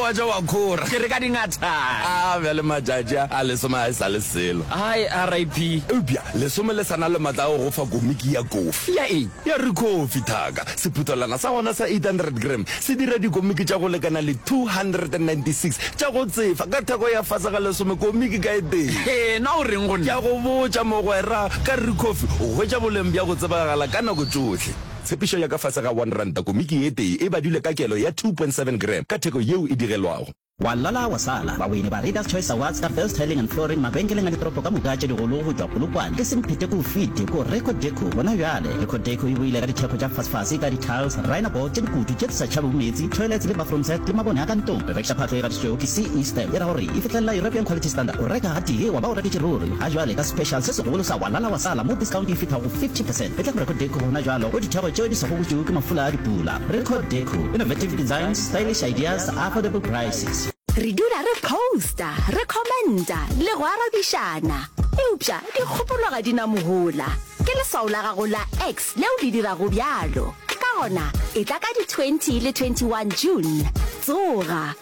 Wa ja wa khora. Ke re ka dingathane. A bjale matšatši a, a lesome a e sa le selo. Hi, RIP. Eupša lesome le sa na le matla a go go fa komiki ya kofi. Ya eng? Ya Rikofi, thaka. Sephuthelwana sa gona sa 800 gram se dira dikomiki tša go lekana le 296 tša go tsefa ka theko ya fase ga lesome komiki ka e tee. Hee, na o reng go nna? Ke a go botša, mogwera, ka Rikofi o hwetša boleng bja go tsebagala ka nako tšohle. Tshepišo ya ka fase ga one ranta komiki ye tee e badilwe ka kelo ya two point seven gram ka theko yeo e digelwago. Wa lala wa sala, baweini ba Readers Choice Awards ka First Tiling and Flooring mabenkeleng a ditoropo ka moka tše digolo go tšwa Polokwane, e seng phete k'o fite, k'o Reco Deco gona bjale. Reco Deco e boile ka dithekgo tša fasfase ka di-tiles, rhino board tše dikutu tše di sa tšhabego meetse, toilets le bathroom set le mabone a ka ntlong. Re rekiša phatlo e gatišitšwego ke CE stamp e ra gore e fihlelela European Quality Standard. O reka gatee wa ba o reketše ruri, ga bjale ka special se segolo sa Wa lala wa sala mo discount e fihla go 50%. Etla go Recordecco gona jwalo o dithego tšeo di sego butšwego ke mafula a dipula. Recordecco, innovative designs, stylish ideas, affordable prices. Re dula re posta, re commenta le go arabišana. Eupša dikgopolo ga di na mohola. Ke leswao la gago la X leo le dirago bjalo. Ka gona, etla ka di 20 le 21 June. Tsoga!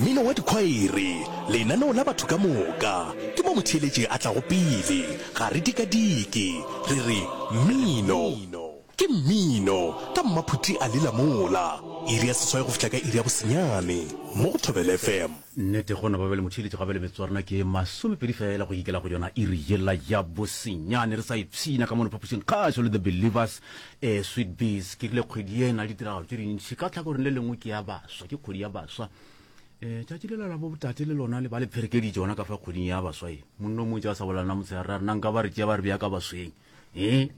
Mmino wa dikhwaere, lenaneo la batho ka moka, ke mo motheeletši a tlago pele. Ga re dikadike, re re, Mmino! Ke mmino! Ka mmaphuti a lela mola. Iri ya seswai go fihla ka iri ya bosenyane, mo go Thobela FM. Nnete, gona ba be le motheeletši gape le metsotso ya rena ke masomepedi feela go ikela go yona iri yela ya bosenyane. Re sa ipshina ka mono phapošing kgašo le The Believers, Ee, Sweet Bees, ke rile kgwedi ye e na le ditiragalo tše dintši. Ka tlhakoreng le lengwe ke ya baswa, ke kgwedi ya baswa. Um tšatši le la la bobotate le lona le ba le pherekeditše gona ka fa kgweding ya baswa e. Monno motse a sa bolalana motshegare ra rena nka ba re tšea ba re bea ka basweng. Ee.